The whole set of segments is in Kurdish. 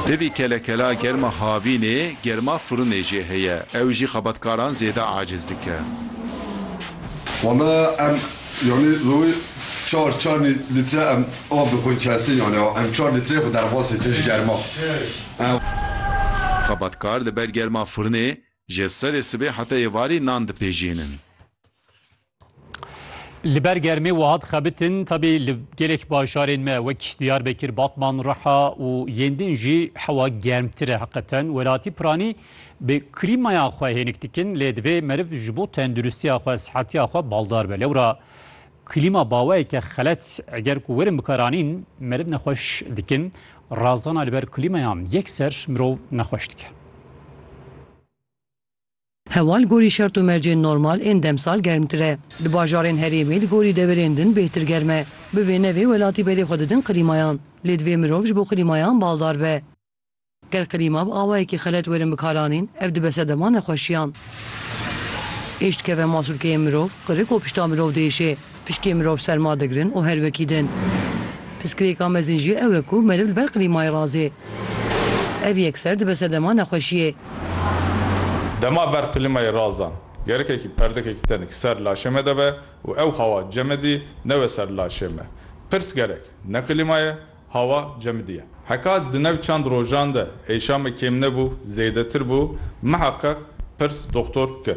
Pivî kelekela germa havînê, germa firinê jê heye. Ew jî xebatkaran zêde aciz dike. Wala em yanî rojê çar çar lître em av dixwin kesî yanî em çar lîtreyê xwe derxwastê tij germa. Xebatkar li ber germa firinê ji serê sibê heta êvarî nan dipejînin. Li ber germê wiha dixebitin tabi li gelek bajarên me wek Diyarbekir, Batman, Riha û yên din jî hewa germtir e heqeten. Welatî piranî bi klîmaya xwe hênik dikin lê divê meriv ji bo tenduristiya xwe, sihetiya xwe baldar be. Lewra klîma baweyeke xelet eger ku werin bikaranîn meriv nexweş dikin. Razana li ber klîmayan yekser mirov nexweş dike. Hewa li gorî şert û mercên normal ên demsal germtir e. Di bajarên herêmê li gorî deverên din bêhtir germ e. Bi vê navê welatî berê xwe didin klîmayan. Lê divê mirov ji bo klîmayan baldar be. Ger klîma bi awayekî xelet werin bikaranîn, ev dibe sedema nexweşiyan. Êş dikeve masûlkeyên mirov, qirik û pişta mirov diêşê. Piştiyê mirov serma digirin û her wekî din. Pirsgirêka mezin jî ew e ku meriv li ber klîmayê razê. Ev yekser dibe sedema nexweşiyê. Dema ber klîmayê razan, gerekekî perdekekî tenik ser laşê me de be û ew hawa cemidî newe ser laşê me. Pirs gerek, ne klîma ye, hawa cemidî ye. Heka di nav çend rojan de êşa me kêm nebû, zêdetir bû, miheqeq pirs doktor bike.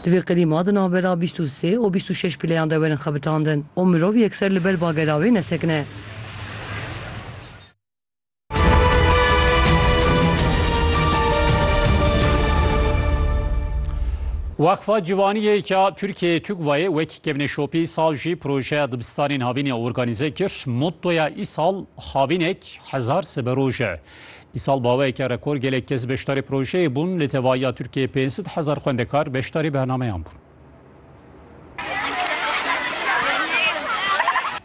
Di vê qilîma di navbera bîst û sê û bîst û şeş pîleyan de werin xebitandin û mirov yekser li ber bagera wê nesekine. Weqfa Civaniyê ya Tirkiyeyê TUGVA'yê wekî kevnê şopî sal jî projeya dibistanên havînê organîze kir. Mottoya îsal havînek hezar siberoj e. Îsal baweyeke rekor gelek kes beşdarî projeyê bûn, li tevayiya Tirkiyeyê pênc sed hezar xwendekar beşdarî bernameyan bûn.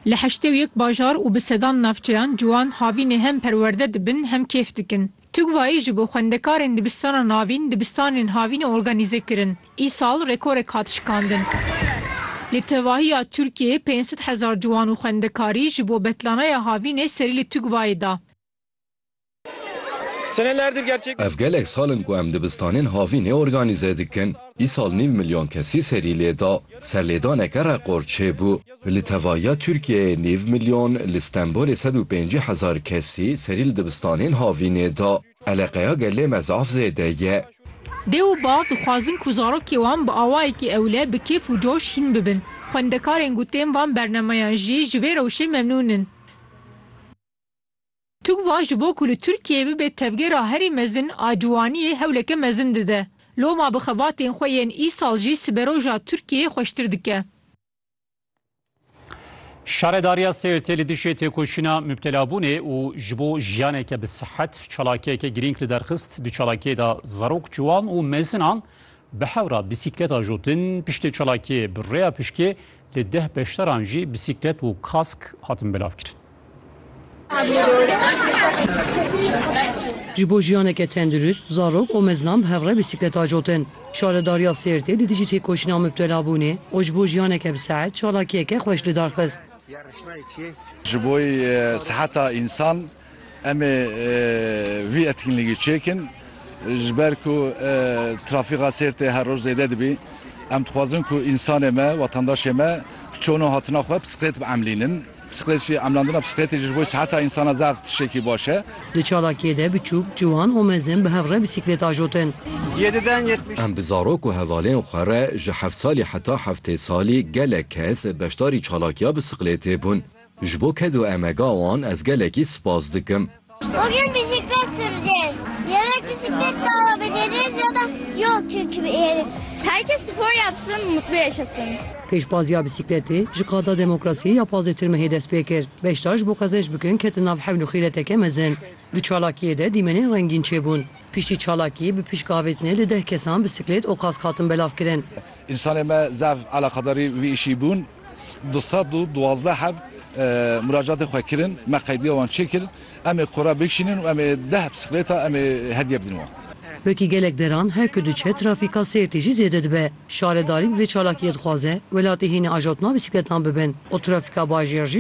Li heştê û yek bajar û bi sedan navçeyan ciwan havînê hem perwerde dibin hem kêf dikin. Tugvayî ji bo xwendekarên dibistana navîn dibistanên havînê organîze kirin. Îsal rekorek hat şikandin. Li tevahiya Tirkiyeyê pênc sed hezar ciwan û xwendekarî ji bo betlanaya havînê serî li Tugvayê da. Ev gelek sal in ku em dibistanên havînê organîze dikin. Îsal nîv milyon kesî serî lê da. Serlêdaneke reqor çêbû. Li tevahiya Tirkiyeyê nîv milyon, li Stenbolê sed û pêncî hezar kesî serî li dibistanên havînê da. Eleqeya gelê me zaf zêde ye. Dê û bav dixwazin ku zarokê wan bi awayekî ewle bi kêf û coş hîn bibin. Xwendekarên gotên van bernemeyan jî ji vê rewşê memnûn in. Tugva ji bo ku li Tirkiyeyê bibe tevgera herî mezin a ciwaniyê hewleke mezin dide. Loma bi xebatên xwe yên îsal jî siberoja Tirkiyeyê xweştir dike. Şaredariya Sêrtê li dijî têkoşîna mubtelabûnê û ji bo jiyaneke bi sihet çalakiyeke girîng li derxist. Di çalakiyê de zarok, ciwan û mezinan bi hewra bîsîklet ajotin. Piştî çalakiyê bi rêya pişkê li deh beşdaran jî bîsîklet û kask hatin belavkirin. Ji bo jiyaneke tendurist, zarok û meznan bi hev re bîsîklet acotin. Şaredariya Sêrtê di dijî têkoşîna mubtelabûnê û ji bo jiyaneke bi sehet çalakiyeke xweş li dar xist. Ji bo seheta însan em ê vî etkinlîgî çêkin. Ji ber ku trafîka Sêrtê her roj zêde dibî, em dixwazin ku însanê me, wetandaşê me bi çonu hatina xwe bisiklêt biemlînin. Psîkolojî, Emlandina psîkolojî ji bo siheta însana zaf tiştekî baş e. Di çalakiyê de biçûk, ciwan û mezin bi hev re bîsîklêt ajotin. Em bi zarok û hevalên xwe re ji heft salî heta heftê salî gelek kes beşdarî çalakiya bisiklêtê bûn. Ji bo ked û emega wan ez gelekî spas dikim. Bugün bisiklet süreceğiz. Yedek bisiklet de alabileceğiz ya da yok çünkü yedek. Herkes spor yapsın, mutlu yaşasın. Pêşbaziya bisikleti ji qada demokrasiyê ya Pazê Tirmehê dest pê kir. Beşdar ji bo qezenc bikin ketin nav hewl û xîreteke mezin. Di çalakiyê de dîmenên rengîn çêbûn. Piştî çalakiyê bi pişk avêtinê li deh kesan bisiklet û kask hatin belavkirin. Însanê me zaf eleqedarî vî îşî bûn. Du sed û duwazdeh heb muracatên xwe kirin, me qeydiya wan çêkir. Em ê qora bikişînin û em ê deh bisikleta em ê hediye bidin wan. Wekî gelek deran her ku diçe trafîka sêrtê jî zêde dibe. Şaredarî bi vê çalakiyê dixwaze welatê hênî ajotma bisikletan bibin û trafîka bajêr jî